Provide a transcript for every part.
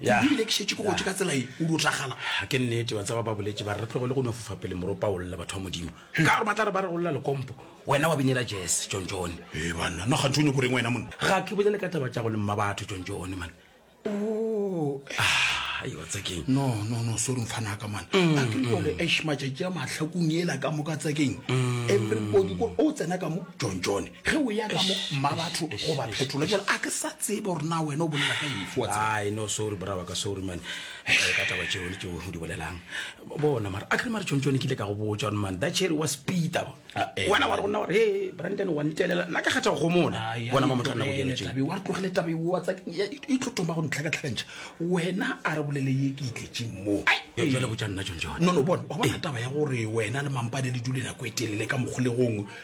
Ya. ke bile ke šetše ke gotše ka tsela ye o dutlagala ga ke nnete wa tseba ba boletse ba re re tlogele go no fofa pele moropa o lla batho ba modimo ka gore ba tla re ba re go lla lekompo wena wa binela jese tšontšone e banna nna gantse o nyoko reng wena monna ga ke bolele ka taba tša go le mma batho tšontšone mane o Ah, ayo tsekeng no no no sorry mfana ka mane a ke gore ash matšatši a mahlakong ela ka moka tsekeng everybody ko o tsena ka mo john john ge o ya ka mo mmabatho goba phetolo jale a ke sa tsebe gore na wena o bolela ka efe wa tseba ai no sorry braba ka sorry man Eh, ka taba tšeo le tšeo o di bolelang bona mara a kere mare tšontšo ne ke ile ka go botša gore man that cherry was peter Ah, eh. wena wa re go nna gore he branden wa ntelela nna ka kgetha go go mona Ai, bona ai, mamotlha nna go tlogele dira tšeo taba eo, wa re tlogele taba eo, wa tsaka- ya- e- e tlo toma go ntlhakatlhakantšha wena a re bolele ye ke itletšeng moo Ee. jale botša nna tšontšone no no bona wa bona taba ya gore wena le mampane le dule nako e telele ka mokgolegong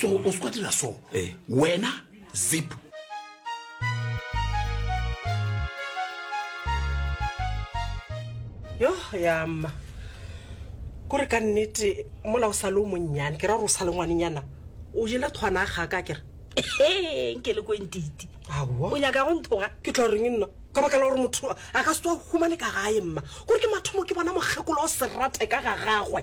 so o se kwa dira so eh. wena zip yo ya mma kore ka nnete mola o sa le o monnyane ke ra gore o sa le ngwanenyana o jele kgwana ga ka kere nke le kwentiti o nyaka go nthoga ke tla reng nna ka baka la gore motho a ka se tswa humane ka gae mma kore ke mathomo ke bona mokgekolo o serate ka ga gagwe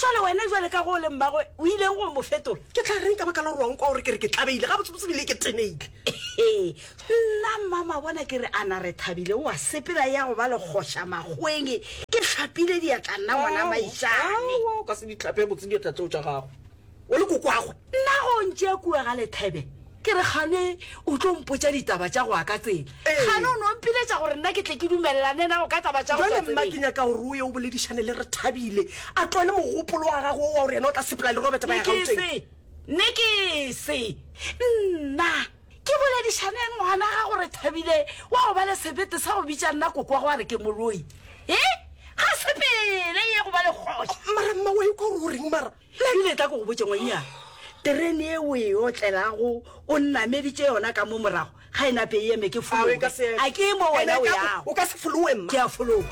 Bjale wena, bjale ka ge o le mmagwe, o ileng go mo fetola? Ke tla reng ka baka la gore wa nkwa gore ke re ke thabile? Gabotsebotse ebile ke teneile. Nna mmamabona ke re, Ana re thabile, o a sepela e ya go ba legoša makgweng. Ke hlapile diatla nna, ngwana Maitšane. Aowa, o ka se di hlape, botse diatla tšeo tša gago. o le kokwagwe. Nna go ntše kua ga lethebe, ke re kgane o tlo mpotša ditaba tša go wa ka tsela. Kgane o no mpiletša gore nna ke tle ke dumelelane nago ka taba tša go tšwa tseleng. Jwale mma ke nyaka gore o ye o boledišane le Rethabile, a tlole mogopolo wa gagwe wo wa gore yena o tla sepela le Robert ba ya Gauteng. Nekese, nekese. Nna, ke boledišane eng ngwana gago Rethabile wa go ba le sebete sa go bitša nna kokwagwe a re ke moloi? He? Ga sepele ye go ba le kgoši. Mara mma wa ikwa gore o reng mara? Ebile tla ko go botše ngwannyana, terene ye o e otlelago o nnameditše yona ka mo morago ga e nape e eme, ke fologe. A ke e mo wena o yago? Ke a fologa.